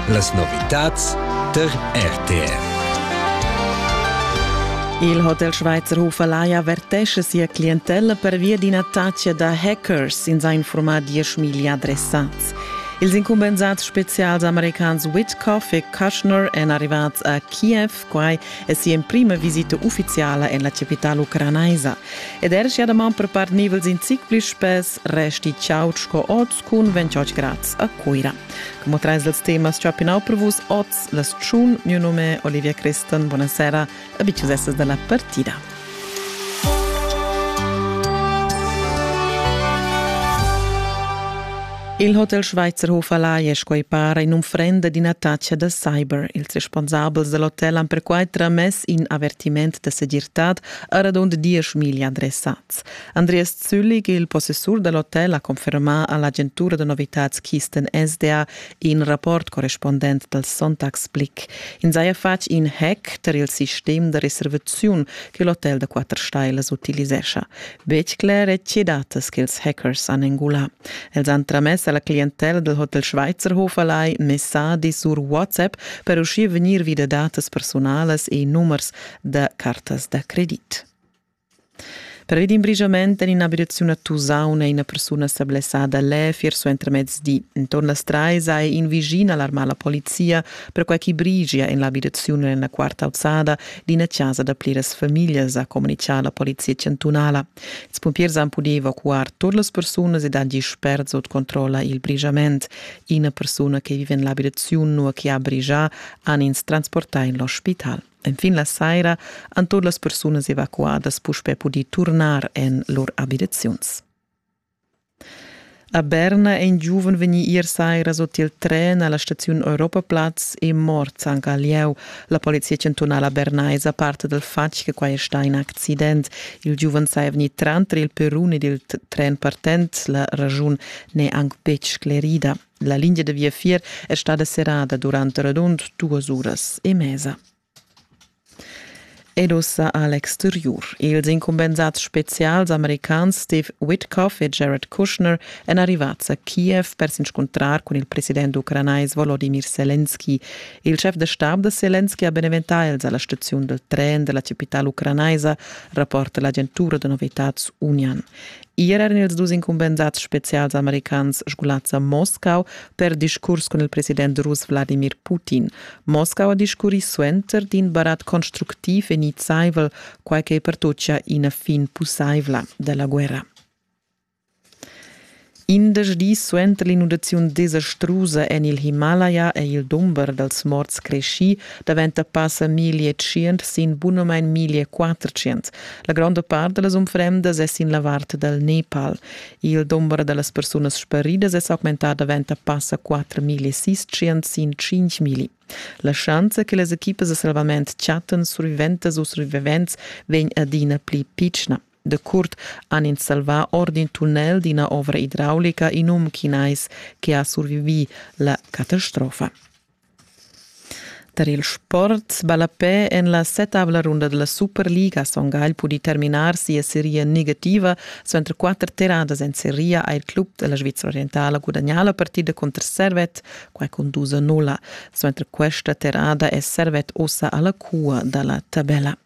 Las novitads der RTR. Il Hotel Schweizerhofer Laia vertesce sia clientella pervia d'ina taccia da hackers in sa informar dieschmiglia adressats. Ils incumbensats spezials americans Whitcoff e Kushner èn arrivats a Kiev, quai è sia emprima visita uffiziala en la capitala ucranaisa. Ed er sia daman per part nivels in zic pli spess resti chaud sco oz cun 28 grads a Cuira. Como trais dels temas chapinau per vus oz las tschun, mio nome Olivia Christen, buonasera, a bicis essas della partida. Il Hotel Schweizerhof Alai è quei para in unfrenda d'ina taccia da cyber. Ils responsabels dell'hotel han perquai tramess in avertiment da segirtad a radund diesch miglia adressa. Andreas Züllig, il possessur da l'hotel, ha confermà a l'agentura da novitads Kisten SDA in rapport correspondent dal Sonntagsblick. In saja fatg in hack tar il sistem da reservaziun che l'hotel da quatter stailas utilisescha. Betg cler è tge datas ch'ils hackers han engulà. Els han tramess a la clientella dal Hotel Schweizerhof alai messadi sur WhatsApp per uschia vegnir vi da datas personalas e numers da cartas da credit. Pervi d'in brigiament en in'abitaziun a Tusaun è ina persuna sa blessada lev ier suentermezdi. Enturn las trais ha in vischin alarmà la polizia, perquai ch'i brigia en l'abitaziun en la quarta auzada d'ina chasa da pliras famiglias, ha communitgà la polizia chantunala. Ils pumpiers han pudì evacuar tut las persunas ed agir spert sut controlla il brigiament. Ina persuna che vive en l'abitaziun, nua che ha brigià, han ins transportà en l'ospital. Enfin la saira han tot las persunas evacuadas puspè pudì turnar en lur abitaziuns. A Berna è in giuven vegnì ier saira sot il tren alla staziun Europaplatz e mort anche a lieu. La polizia cantonala bernaisa parte dal fatg che quai è sta in accident. Il giuven sei veni tranter il perun ed il tren partent. La ragiun n'è anche betg sclerida. La lingia da viafier è stada serrada durant radund duas uras e mesa. Ed ussa a l'exteriur. Ils incumbensads spezials americans Steve Witkoff e Jared Kushner èn arrivads a Kiev per s'inscuntrar cun il president ucranais Volodymyr Selenski. Il chef da stab da Selenski ha beneventà els alla staziun del tren della capitale ucranaisa, rapporta l'agentura da novitads Union. Ier eran ils dus incumbensads spezials americans sgulads a Moscau per discurs cun il president russ Wladimir Putin. Moscau ha discurrì suenter d'in barat constructiv e nizzaivel, quai che pertochia ina fin pussaivla da la guerra. Indesch dis suenter l'inundaziun desastrusa en il Himalaya è il dumber dals morts creschì davent da passa 1.500 sin bunamain 1.400. La gronda part da las unfrendas è sin la vart dal Nepal. Il dumber da las persunas sparidas è s'augmentà davent a passa 4.600 sin 5.000. La schanza che las equipas da salvament chattan surviventas u survivents vegn adina pli pitschna. Decurt han ins salvà or d'in tunnel d'ina ovra idraulica in um chinais che ha survivì la catastrofa. Tar il sport ballapè en la setavla runda da la Superliga ha Son Gagl pudì terminar sia seria negativa. Suenter quatter terradas en seria ha il club da la Svizra orientala gudagnà la partida cunter Servet, quai cun dus a nulla. Suenter questa terrada è Servet ossa a la cua da la tabella.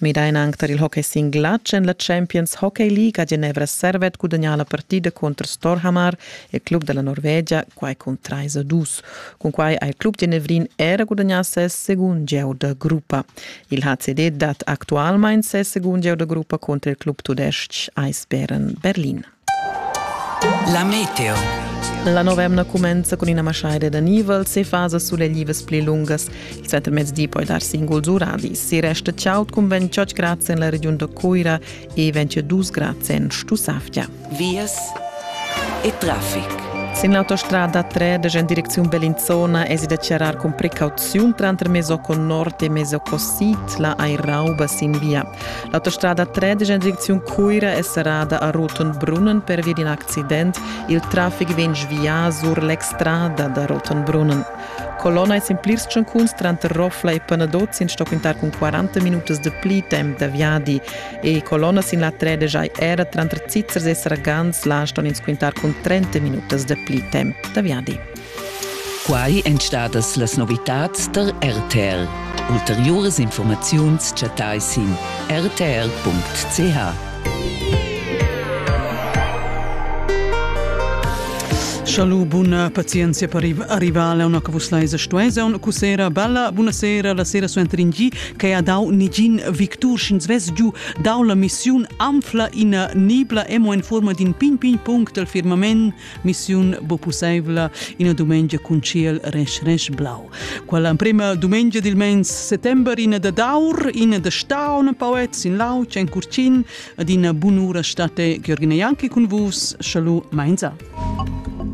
Midain anc tar il hockey sin glatsch en la Champions Hockey League ha Genevra Servet gudagnà la partida cunter Storhamar, il club da la Norvegia, quai cun trais a dus. Cunquai ha il club genevrin era gudagnà ses segund gieu da gruppa. Il HCD dat actualmain ses segund gieu da gruppa cunter il club tudestg Eisbären Berlin. La meteo. La nova emna cumenza cun ina maschaida d'anivels e fasas suleglivas pli lungas. Il settemezdi poi dar singuls uradis. Si resta chaud cun 28 grads en la regiun da Cuira e 22 grads en Stussavgia. Vias e traffic. Sin l'autostrada 3 da en direcziun Bellinzona es da charrar cun precauziun tranter Mesoco Nord e Mesoco Sid la ai rauba sin via. L'autostrada 13 en direcziun Cuira è serrada a Rotenbrunnen pervia d'in accident. Il traffic vegn svià sur l'extrada da Rotenbrunnen. Colonna e sin plirs tschancuns tranter Roffla e Panadot sin sto quintar cun 40 minutas de pli temp da viadi e colonna sin la 13 hai era tranter Zizzers e Sargans la ston ins quintar cun 30 minutas de pli temp da viadi. Quai èn stadas las novitads tar RTL. Ulteriuras informaziuns chattai sin rtl.ch. Schalu buna pazienzia per arrivare a una cavuslaisa stuesa un cussera bella buonasera la sera suenter in gi che ha dau nigin victur sch'ins vess giu dau la missiun anfla ina nibla emo en forma d'in pin pin punct del firmament missiun bo pusseivla ina dumengia cun ciel resch resch blau. Quella emprema dumengia dil mens settember ina da daur, ina da staun poets in lauc en curcin ad ina bunura state Georgina Janki cun vus, schalu mainza. Musik